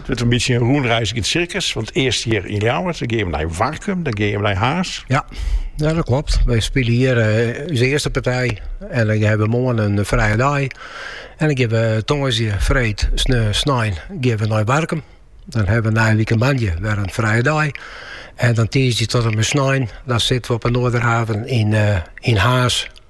It wurdt in bytsje in rûnreizgend sirkus. Want earst hjir yn Ljouwert, dan gean we nei Warkum, dan gean we nei Harns. Ja, ja dat klopt. We spelen hier uh, onze eerste partij. En dan hebben we morgen een vrije dag. En dan gaan we tongersdje, vreed, sneu, snijn, gaan we naar Warkum. Dan hebben we na een weekend bandje weer een vrije dag. En dan tijdens tot en met snijn, dan zitten we op een Noorderhaven in, uh, in Haas.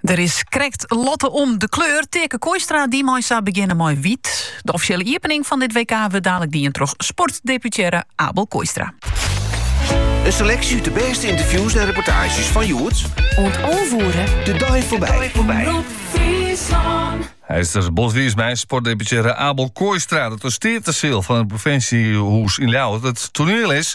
Der is krekt lotte om de kleur. Teake Kooistra die mei sa begjinne mei wyt. De offisjele iepening fan dit WK wurdt dadelijk dien troch sportdeputearre Abel Kooistra. In seleksje út de bêste ynterviews en reportaazjes fan hjoed. Oant onvoeren. De dei foarby. Hy is der bot wiis mei, sportdeputearre Abel Kooistra, dat de Steateseal fan it provinsjehûs yn Ljouwert it toaniel is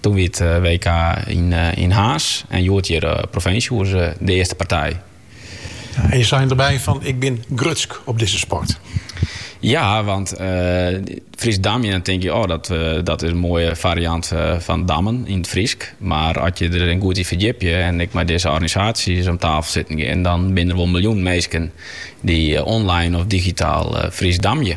Toen wie it WK yn Harns en hjoed hjir op Provinsjehûs de earste partij. En jo seine derby fan ik bin grutsk op dizze sport. Ja, want Frysk damjen, dan tink je oh dat is in moaie fariant fan dammen yn it Frysk. Mar as je derin goed yn ferdjipje en ek mei dizze organisaasjes om tafel sitten gean, dan binne der wol miljoenen minsken dy't online of digitaal Frysk damje.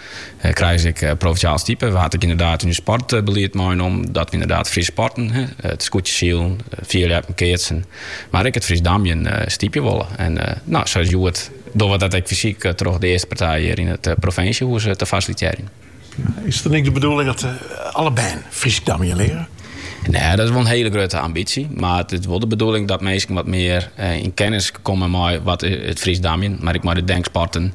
He krije se ek provinsjale stipe. We ha it ek ynderdaad yn it sportbelied meinommen dat we ynderdaad Fryske sporten. It skûtsjesilen, fierljappen, keatsen. Mar ek it Frysk damjen stypje wolle. En no, sa as hjoed dogge we dat ek fysyk troch de earste partij hjir yn it provinsjehûs te fasilitearjen. Is it dan ek de bedoeling dat alle bern Frysk damjen leare? Nee, dat is wol in hiele grutte ambysje. Mar it is wol de bedoeling dat minsken wat mear yn kennis komme mei wat it Frysk damjen, mar ek mei de denksporten,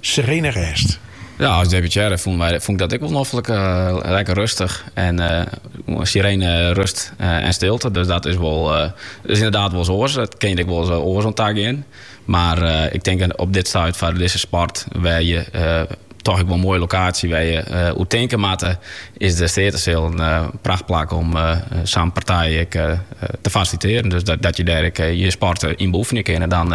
Serene rêst. Ja, as deputearre fûn ik dat ek wol noflik. Lekker rustich en serene rust en stilte. Dus dat is wol is ynderdaad wolris oars. Dat kin hjir ek wolris oars oan tagean. Mar ik tink op dit stuit foar dizze sport, wêr't je toch ek wol in moaie lokaasje wêr't je uh, eh, tinke moatte, is de Steateseal in uh, prachtplak om uh, sa'n partij ek, uh, te fasilitearjen. Dus dat, dat je dêr ek, je sport yn beoefenje kinne. En dan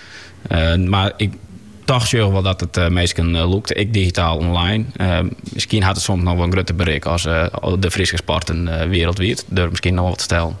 mar ik toch sjoch wol dat it minsken lûkt, ek digitaal online. Miskien hat it soms noch wol in grutter berik as de Fryske sporten wiereldwiid, durf ik miskien noch wol te stellen.